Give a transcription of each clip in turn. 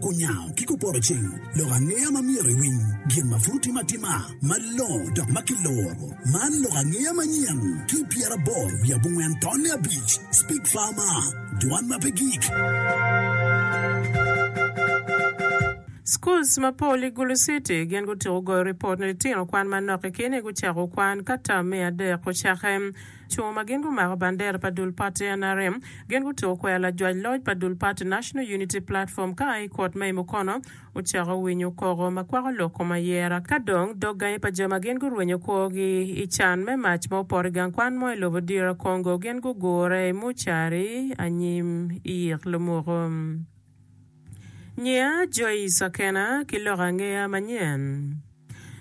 Kunyango ki kupoto cing, lok angeya ma myero iwiny, gin ma pud otim atima malongo dok ma kiloro. Man lok angeya manyen ki pyeraboro wiye abongwen tonne abic, Speak Farmer, Dwan ma pe gik. Schools mapol i Gulu City gin gutyeko goyo ripot ni litino kwan manok kikini gucako kwan ka tam me adek ocake. Co ma gin gumako bandera pa dul pati nrm gin gutuko kwero lajwac loc pa dul pati National Unity Platform ka a i kot ma i Mukono ocako winyo koko ma kwako lok kom ayera ka dong dog gangi pa jo ma gin gurwenyo kwogi i can me mac ma opoto i gang kwan mo i lobo DR Congo gin gugure i mucari anyim i ik lumoko. Nyiya Joyce Akena ki lok angeya manyen.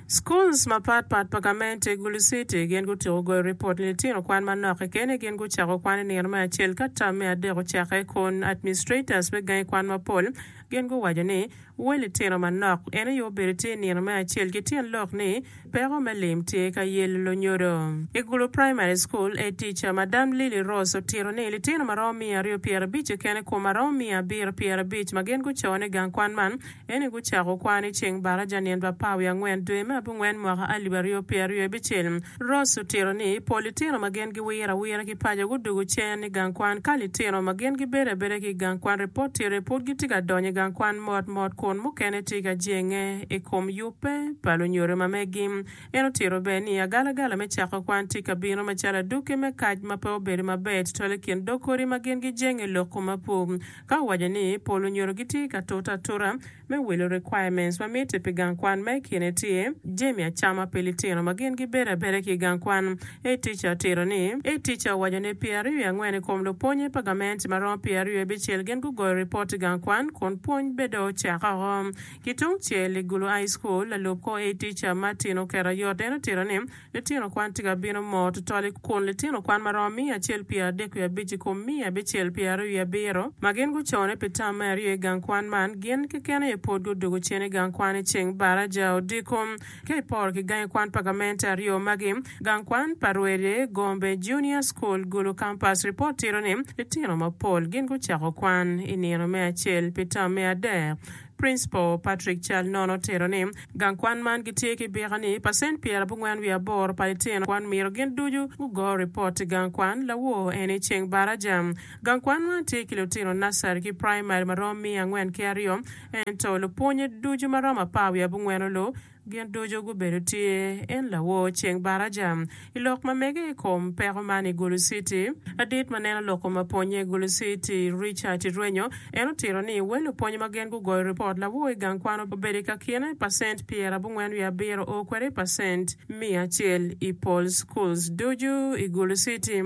Schools mapat pat pa gamente i Gulu City gin gutyeko goyo ripot ni litino kwan manok kekeni gin gucako kwan i nino me acel ka tam me adek ocakke kun administrators me gangi kwan mapol gin guwaco ni we litino manok eno aye obedo tye i nino me acel ki tyen lok ni Peko me lim tye ka yelo lunyodo. I Gulu Primary School, Head Teacher, Madam Lily Rose otito ni litino ma romo miya aryo pyera abic keken i kom ma romo miya abiro pyera abic ma gin guco ni gang kwan man eni gucako kwan i ceng baraja nyen pa apar wiye angwen dwe me abungwen mwaka alip aryo pyera aryo abicel. Rose otito ni pol litino ma gin giwiro awira ki paco gudugu cen i gang kwan ka litino ma gin gibedo abeda ki i gang kwan repot tye re pud gitye ka donyo i gang kwan mot mot kun mukene tye ka jenge i kom yubbe pa lunyodo ma megi. En otito bene ni, Agalagala me cako kwan tye ka bino macalo adwogi me kac ma pe obedo maber tutwal i kin dog kodi ma gin gijenge i lok komapu. Ka owaco ni, Pol lunyodo gitye ka tute atuta me wilo requirements ma mitte pi gang kwan ma i kine tye jami acama pi litino ma gin gibedo abeda ki i gang kwan. A Teacher otito ni, A Teacher owaco ni pyera aryo i angwen i kom lupwonye pa gamente ma romo pyera aryo i abicel gin gugoyo ripot i gang kwan kun pwony bed dong ocako oko. Ki tung cel i Gulu High School, lalub kor A tica Martin Okerayot en otito ni, Litino kwan tye ka bino moo tutwal i kun litino kwan ma romo miya acel pye adek wiye abic i kom miya abicel pye aryo wiye abiro ma gin gucone pi tam me aryo i gang kwan man gin keken aye pud gudwogo cen i gang kwan i ceng baraja odiko. Ka iporo ki gangi kwan pa gamente aryo magi, gang kwan pa Rwede, Gombe Junior School, Gulu Campus, ripot tito ni litino mapol gin gucako kwan i nino me acel pi tam me adek. Principal Patrick Cal Nono tero ni, Gang kwan man gitye ki bika ni pacent pyer abongwen wiye aboro pa litino kwan myero gin ducu gugo ripot i gang kwan. Lawoo eni ceng baraja. Gang kwan man tye ki lutino nursery ki primary maromo miya angwen ki aryo, ento lupwonye ducu maromo apar wiye abongwen olu. Gin ducu gubedo tye en lawor ceng baraja. I lok ma mege i kom peko man i Gulu Citi, ladit ma neno loko ma pwonye i Gulu Citi, Richard Irwenyo, en otito ni wel lupwony ma gen gugoyo ripot lawor i gang kwan obedo i kakine pacent pyera abongwen wiye abiro o kwede i pacent miya acel i pol schools ducu i Gulu Citi.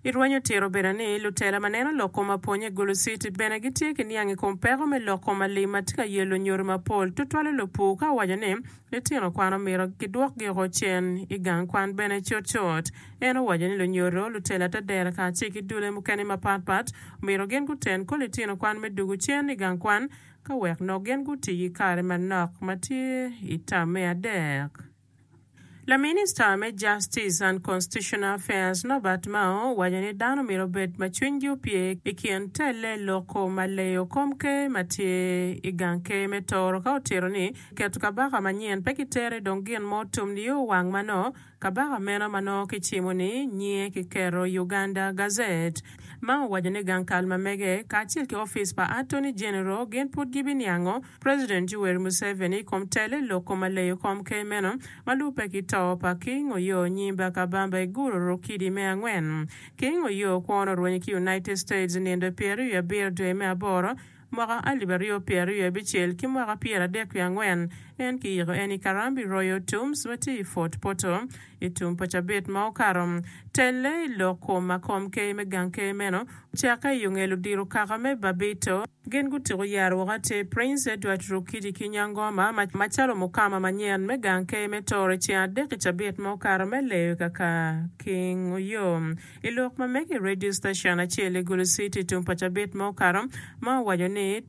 Irwenyo tiro bene ni lutela ma neno lok kom apwonya i Gulu City bene gitye ki niang i kom peko me lok kom alim ma tye ka yelo nyodi mapol, tutwale lupur ka owaco ni litino kwan omyero gidwokgi oko cen i gang kwan bene cutcut. En owaco ni lunyodo, lutela te dero kacel ki dulle mukene mapatpat omyero gin guten kor litino kwan me dwogo cen i gang kwan ka wek nok gin guti ki kare manok ma tye i tam me adek. Laminista me Justice and Constitutional Affairs Norbert Mao owaco ni dano omyero obed ma cwinygi opye i kin telle loko ma leyo kom ker ma tye i gang ker me Tooro ka otito ni keto kabaka manyen pe kitere dong gin mo otum nio wang ma nongo kabaka meno ma nongo kicimo ni nyinge kiketo i Uganda Gazette. Mao owaco ni gang kal ma mege kacel ki opic pa Attorney General gin pud gibiniango President Yoweri Museveni i kom tele loko ma leyo kom ker meno ma lubbe ki to pa King Oyoo Nyimba Kabamba i guro Rokidi me angwen. King Oyoo kwon orwenyo ki United States nindo pyeraryo i abiro dwe me aboro mwaka alip aryo pyeraryo abicel ki mwaka pyer adek wiye angwen en ki yiko en i Karambi Royal Tombs ma tye i Fort Portal i tum pa cabit ma okato. Tele loko ma kom ker me gang ker meno ocakke i ongelo diro kaka me Babito. Gin gutyeko yero woko atir Prince Edward Rukidi ki Nyangoma macalo mukama manyen me gang ker me Tooro ceng adek i cabit ma okato me leyo i Kakaking Oyo i lok ma mege i radio station acel i Gulu City tung pa cabit ma okato ma owaco ni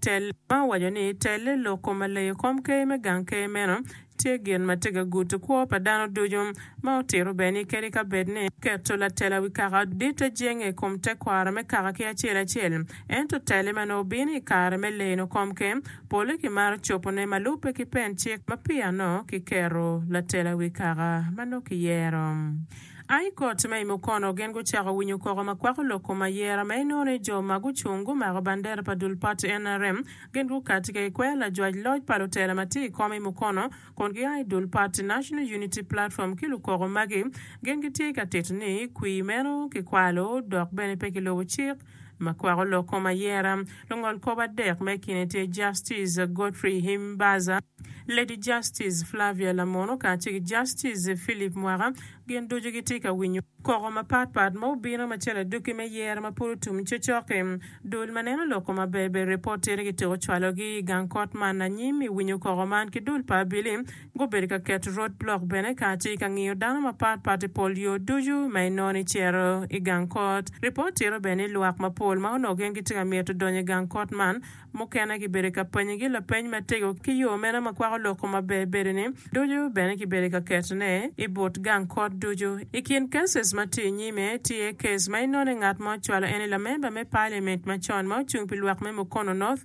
telle lok kom ma leyo kom ker me gang ker meno Tye gin ma tye ka gudo kwo pa dano ducu, ma otito bene ni kadi ka bed ni keto latela wi kaka ditte jenge i kom tekwaro me kaka ki acel acel, ento tele ma nongo bino i kare me leno komke, pole kimaro cobone ma lubbe ki pen cik ma piyano kiketo latela wi kaka ma nongo kiyero. A I kot ma i mukono, gin gucako winyo koko ma kwako lok kom ayera ma inongo ni jo ma gucung gumako bandera pa dul pati nrm gin gukati ka gikweyo lajwac loc pa lutela ma tye i kom i mukono kun gia i dul pati National Unity Platform ki lukoko magi gin gitye ka tito ni kwir meno kikwalo dok bene pe kilubo cik ma kwako lok kom ayera. Lungol kop adek ma i kine tye Justice Godfrey Himbaza, Lady Justice Flavia Lamono kacel ki Justice Philip Mwaka gin ducu gitye ka winyo koko mapat pat ma obino ma cal adwogi me yero ma pud otum cocoki. Dul ma neno lok kom aberber reportere gitiko cwalogi i gang kot man anyim i winyo koko man ki dul pa abili. Gubedo ka keto rod blok bene ka tye ka ngiyo dano mapat pat i pol yo ducu ma inongo ni cito i gang kot. Ripot tito bene ni lwak mapol ma onongo gin gitye ka mito donyo i gang kot man, mukene kibedo ka panyigi lapeny matego ki yo meno ma kwako lok kom maber bedo-ni ducu bene kibedo ka ketone i but gang kot ducu. I kin cases ma tye inyime, tye case ma inongo ni ngat ma ocwalo en-ni lamemba me parliament macon ma ocung pi lwak me Mukono North,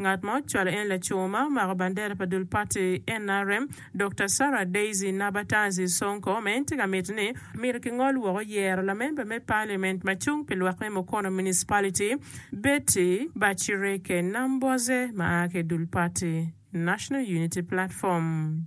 Ngat ma ocwalo en laco ma omako bandera pa dul pati nrm, Dokta Sarah Daisy Nabatazi Sonko ma en tye ka miti ni myero kingol woko yero lamemba me Parliament ma cung pi lwak me Mukono Municipality, Betty Bachireke Nambwaze ma a ki i dul pati National Unity Platform.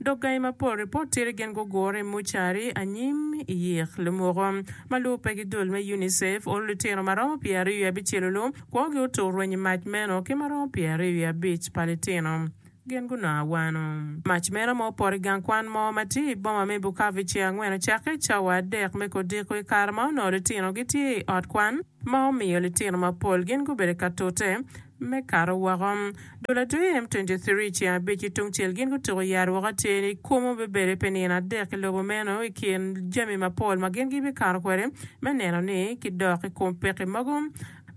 Dok gangi mapol ripot tye ni gin gugure i mucari anyim i yik lumoko. Ma lubo pe ki dul me UNICEF, uru litino ma romo pyeraryo wiye abicel-lu lu kwogi otur rweny i mac meno ki ma romo pyeraryo wiye abic pa litino gin gunongo awano. Mac meno ma opoto i gang kwan mo ma tye i boma me Bukavu i cer angwen ocakke i cawa adek me kodiko i kare ma onongo litino gitye i ot kwan ma omiyo litino mapol gin gubedo ka tute me kato woko. Dola two em twenty three ceng abic ki tungcel gin gutuko yat woko atir ni kwomo bibede pi nino adek i lobo meno i kin jami mapol ma gin gibikato kwede me neno ni kidok i kom pekki mogo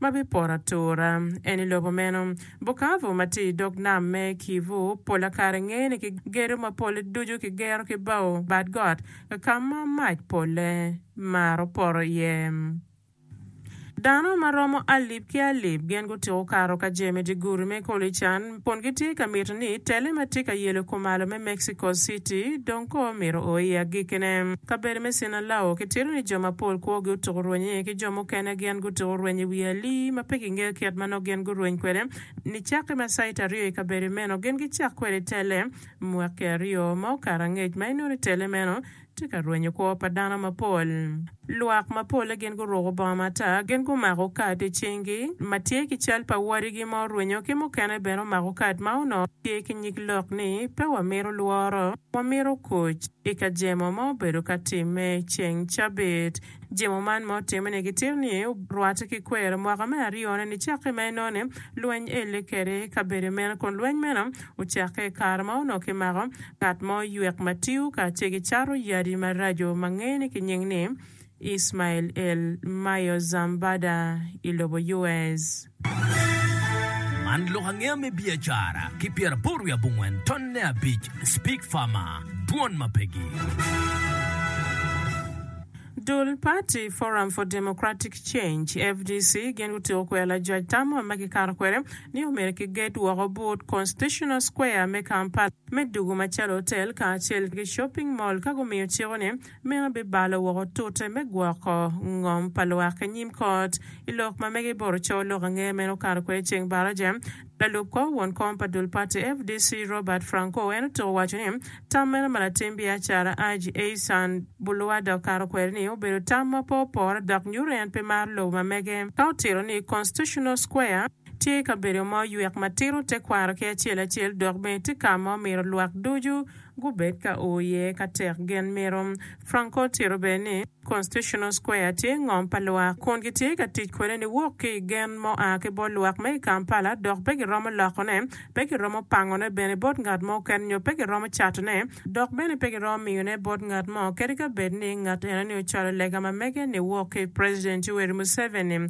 ma bipoto atura. En i lobo meno. Bukavu ma tye i dog nam me Kivu pola kare ngeye ni ki gedo ma polle ducu ki gero ki bao bad got ka ma mac polle maro poto iye. Dano ma romo alip ki alip gin gutyeko kato ka jemi dye gudi me Kolican kun gitye ka mito ni tele ma tye ka yelo kumalo me Mexico City dong koo mito o i agikkine. Kabedo me Sinalao kitito ni jo mapol kwogi otuko rweny iye ki jo mukene gin gutuko rweny i wi alii ma pe kingeyo kit ma nongo gin gurweny kwede. Nicakke ma cait aryo i kabedo meno gin gicako kwede tele mwaki aryo ma okato angec ma inongo ni tele meno Tye ka rwenyo kwo pa dano mapol. Lwak mapolle gin guruko bongo matar, gin gumako kad i cingi ma tye ki cal pa wadigi ma orwenyo ki mukene bene omako kad ma onongo tye ki nyig lok ni Pe Wamito Lworo, Wamito Kuc i ka jemo ma obedo ka timme ceng cabit. Jemo man ma otimme ni gitir ni orwatte ki kwer. Mwaka me aryone ni cakke ma enone lweny elle kede i kabedo meno kun lweny meno ocakke i kare ma onongo kimako ngat mo ywek ma tiyo kacel ki cato yadi maraco ma ngeye ni ki nying ni Ismail El Mayo Zambada i lobo US. Man lok angeya me biacara ki pyeraboro wiye abongwen tonne abic Speak Farmer, Dwon ma Pegi. Dul pati Forum for Democratic Change, fdc, gin gutyeko kwero lajwac tam ma kikato kwede ni omyero kiget woko but Constitutional Square me Kampala me dugu macalo otel kacel ki shopping mall ka gumiyo ciko ni Meno bibalo woko tute me gwoko ngom pa lwak i nyim kot. I lok ma mege iboro coo lok angeya meno okato kwede i ceng baraja. Lalub kor won kom pa dul pati FDC Robert Franco en otuko waco ni tam meno ma latim biacara Haji Eisan Buluwada okato kwede ni obedo tam ma pe opore dok nyuto ni en pe maro lobo ma mege ka otito ni Constitutional Square tye kabedo ma oywek ma tito tekwaro ki acel acel dok bene tye ka ma omito lwak ducu gubed ka o iye ka tek gin mito. Franco otito bene ni, Constitutional Square tye ngom pa lwak, kun gitye ka tic kwede niwok ki i gen ma oa ki bot lwak ma i Kampala dok pe giromo lokone, pe giromo pangone bene bot ngat mo keken nyo pe giromo catone, dok bene pe giromo miyone bot ngat mo kadi ka bed ni ngat enoni ocwalo lega ma mege niwok ki i President Yoweri Museveni.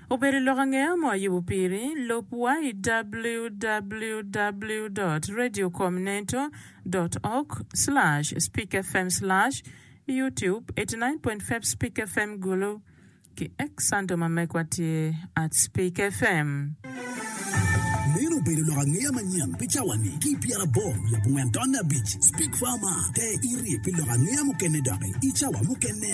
Obedo lok angeya mo ayubo piri. Lub wa i www dot radio com neto dot org slash speak fm slash youtube eighty nine point five speak fm gulu ki ek santo ma mekwa tye at speak fm. Meno obedo lok angeya manyen pi cawa-ni ki i pyera abor wiye bungwen tonne abic. Speak Farmer, te iri pi lok angeya mukene doki i cawa mukene.